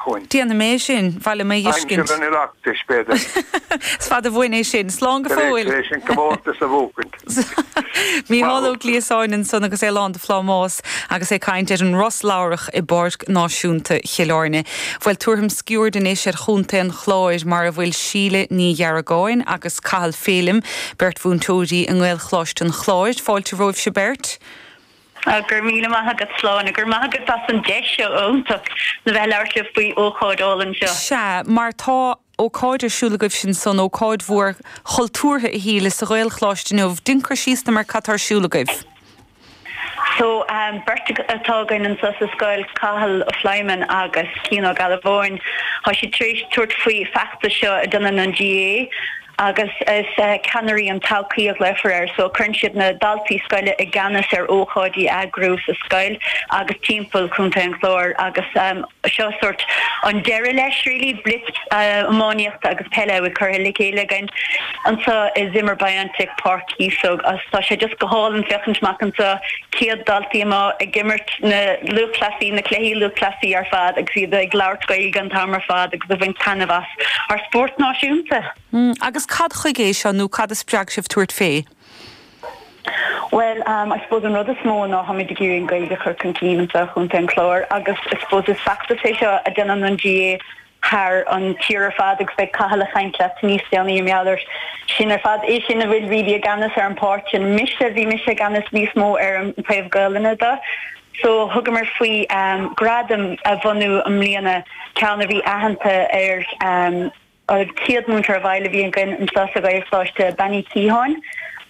chugainn. Déanfaidh mé é sin, ba mhaith liom é a fheiscint. Aimsir an Oireachtais, b'fhéidir. Is fada uainn é sin. Slán go fóill! Tar éis, tar éis an comórtas a bhuacaint. Mícheál Ó Gliasáin ansan agus é lán de phlámás agus é ag caint ar an róslabhrach i bPáirc Náisiúnta Chill Áirne. Bhuel, tabharfam sciuird anois ar Chontae an Chláir mar a bhfuil Síle Ní Dheargáin agus Cathal Phelim, beirt mhúinteoirí i nGaelcholáiste an Chláir. Fáilte romhaibhse beirt. Go raibh míle maith agat, Sláine. Go raibh maith agat as an deis seo iontach le bheith ag labhairt libh faoi ócáid álainn seo. Sea, mar tá ócáid ar siúl agaibhse ansan, ócáid mhór chultúrtha a Shíle, sa Ghaelcholáiste inniu. Déan cur síos dom ar cad tá ar siúl agaibh. So, beirt atá againn anso sa scoil, Cathal Pléimeann agus Cian Ó Gealbháin. Tá siad tar éis tabhairt faoi feachtas seo a dhéanann an GAA. agus is ceannairí an todhchaí a ghlaofar air so. Cuireann siad na daltaí scoile i gceannas ar ócáidí a eagrú sa scoil agus timpeall Chontae an Chláir agus seo sórt an deireadh leis really. Blitz iománaíochta agus peile a bhfuil curtha le chéile againn anseo i Zimmer Biontech, Páirc Chíosóg agus tá sé just go hálainn féachaint amach anseo, 100 daltaí amuigh ag imirt na lúthchleasaí, na cluichí lúthchleasaí ar fad agus iad ag labhairt Gaeilge an t-am ar fad agus ag bhaint taitneamh as. ár spórt náisiúnta. Agus cad chuige é seo nó cad a spreag sibh tabhairt fé? Bhuel, I suppose an rud is mó ná táimid ag iarraidh an Ghaeilge a chur chun cinn anseo i gContae an Chláir agus I suppose is feachtas é seo a déanann an GAA thar an tír ar fad agus beidh Cathal ag caint leat níos déanaí i ngeall air sin ar fad. É sin a bhfuil really i gceannas ar an pháirt sin. Mise, bhí mise i gceannas níos mó ar an taobh Gaelainne de. So thugamar faoi gradam a bhunú i mbliana, ceann a bhí aitheanta ar an chéad múinteoir i bhfeighil a bhí againn anseo sa Ghaelcholáiste, Bean Uí Shíocháin.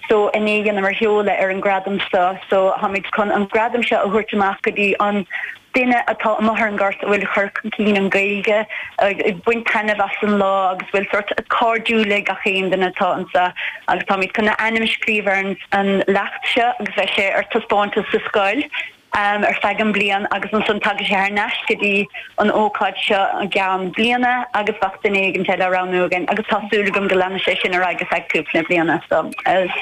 So inné dheineamar sheoladh ar an gradam seo. So táimid chun an gradam seo a thabhairt amach go dtí an duine atá amuigh ar an ghort a bhfuil ag cur chun cinn an Gaeilge, ag baint taitneamh as an lá agus a bhfuil sórt cairdiúil le gach aon duine atá anso agus táimid chun a ainm a scríobh ar an leacht seo agus bheidh sé ar taispeántas sa scoil ar feadh an bliain agus ansan tagann sé thar n-ais go dtí an ócáid seo i gceann bliana agus bheadh duine éigint eile á roghnú againn agus tá súil agam go leanfaidh sé sin ar aghaidh ar feadh cúpla bliana so is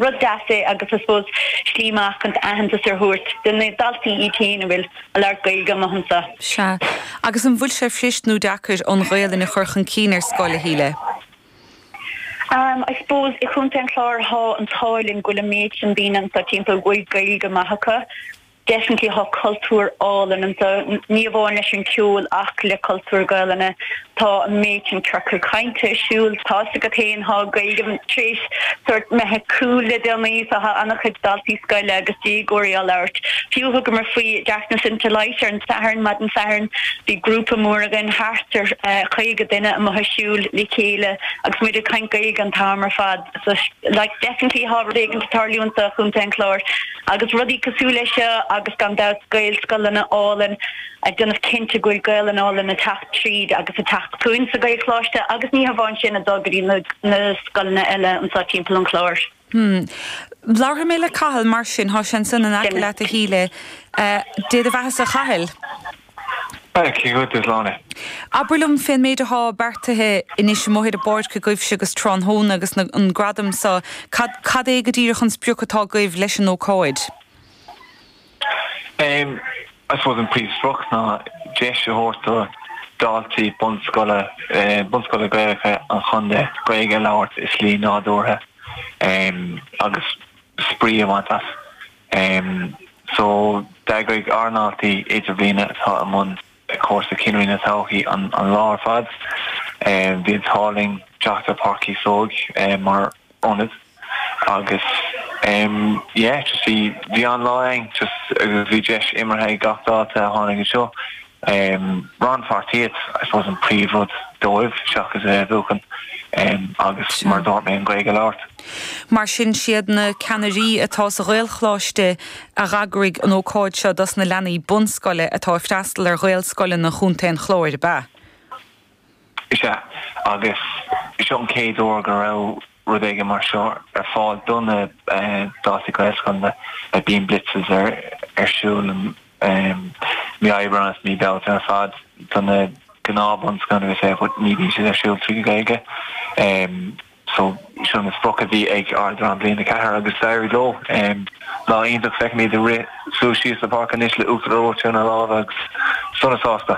rud deas é agus I suppose slí maith chun aitheantas a thabhairt do na daltaí iad féin a bhfuil ag labhairt Gaeilge maith anseo. Sea. Agus an bhfuil sé fuirist nó deacair an Ghaelainn a chur chun cinn ar scoil, a Shíle? Am, I suppose, i Chontae an Chláir thá an t-ádh linn go bhfuil an méid sin daoine anseo timpeall a bhfuil Gaeilge maith acu. Definitely thá cultúr álainn anseo, ní amháin leis an ceol ach le cultúr Gaelainne Tá an méid sin ciorcail cainte ar siúl, tá's agat féin, tá Gaeilge tar éis sórt bheith cool le déanaí, so tá an-chuid daltaí scoile agus déagóirí á labhairt fiú. Thugamar faoi Darkness into Light ar an Satharn, maidin Sathairn, bhí grúpa mór againn, thart ar chaoga duine amuigh ag siúl le chéile agus muid ag caint Gaeilge an t-am ar fad. So like definitely tá rud éigint ag tarlú anso i gContae an Chláir agus rudaí cosúil leis seo agus gan dabht Gaelscoileanna áille. ag déanamh cinnte go bhfuil Gaeilge álainn ag teacht tríd agus ag teacht chugainn sa Ghaelcholáiste agus ní hamháin sin, ag dul go dtí na scoileanna eile anseo timpeall an Chláir. Hm. Labharfaidh mé le Cathal mar sin, tá sé ansin in aice leat a Shíle. Dé do bheathasa a Chathail. Dia dhuit a Shláine. Abair liom fén méid atá beartaithe anois amuigh ar an bpáirc agaibhse um thráthnóna agus an gradam so, cad é go díreach an sprioc atá agaibh leis an ócáid? I suppose an príomhsprioc ná deis a thabhairt do daltaí bunscoile, bunscoile Gaelacha an chontae Gaeilge a labhairt i slí nádúrtha agus spraoi a bhaint as. So d'eagraigh ár ndaltaí Idirbhliana atá i mbun. cúrsa Ceannairí na Todhchaí an lá ar fad. Bhí an t-ádh linn teacht ar Páirc Chíosóig mar ionad agus yeah just bhí bhí an-lá againn just agus bhí deis imeartha ag gach dalta a tháinig anseo. Rannpháirtíocht I suppose an príomhrud dóibh seachas a bheith ag buachan agus mar a dúirt mé an Ghaeilge a labhairt. Mar sin, siad na ceannairí atá sa Ghaelcholáiste a dh'eagraigh an ócáid seo dos na leanaí bunscoile atá ag freastal ar Ghaelscoileanna Chontae an Chláir, ab ea? Is ea, agus seo an chéad uair go raibh rud éigin mar seo ar fáil do na daltaí Gaelscoileanna. Bíonn blitzes ar siúl mí Aibreán agus mí Bealtaine ar fad do na gnáthbhunscoileanna agus é, but ní bhíonn siad ar siúl trí Ghaeilge. So seo an sprioc a bhí ag ár ndream Bliain a Ceathair agus d'éirigh leo. Lá iontach, feicim iad ag rith suas síos an pháirc anois le uachtar reoite ina lámha agus sona sásta.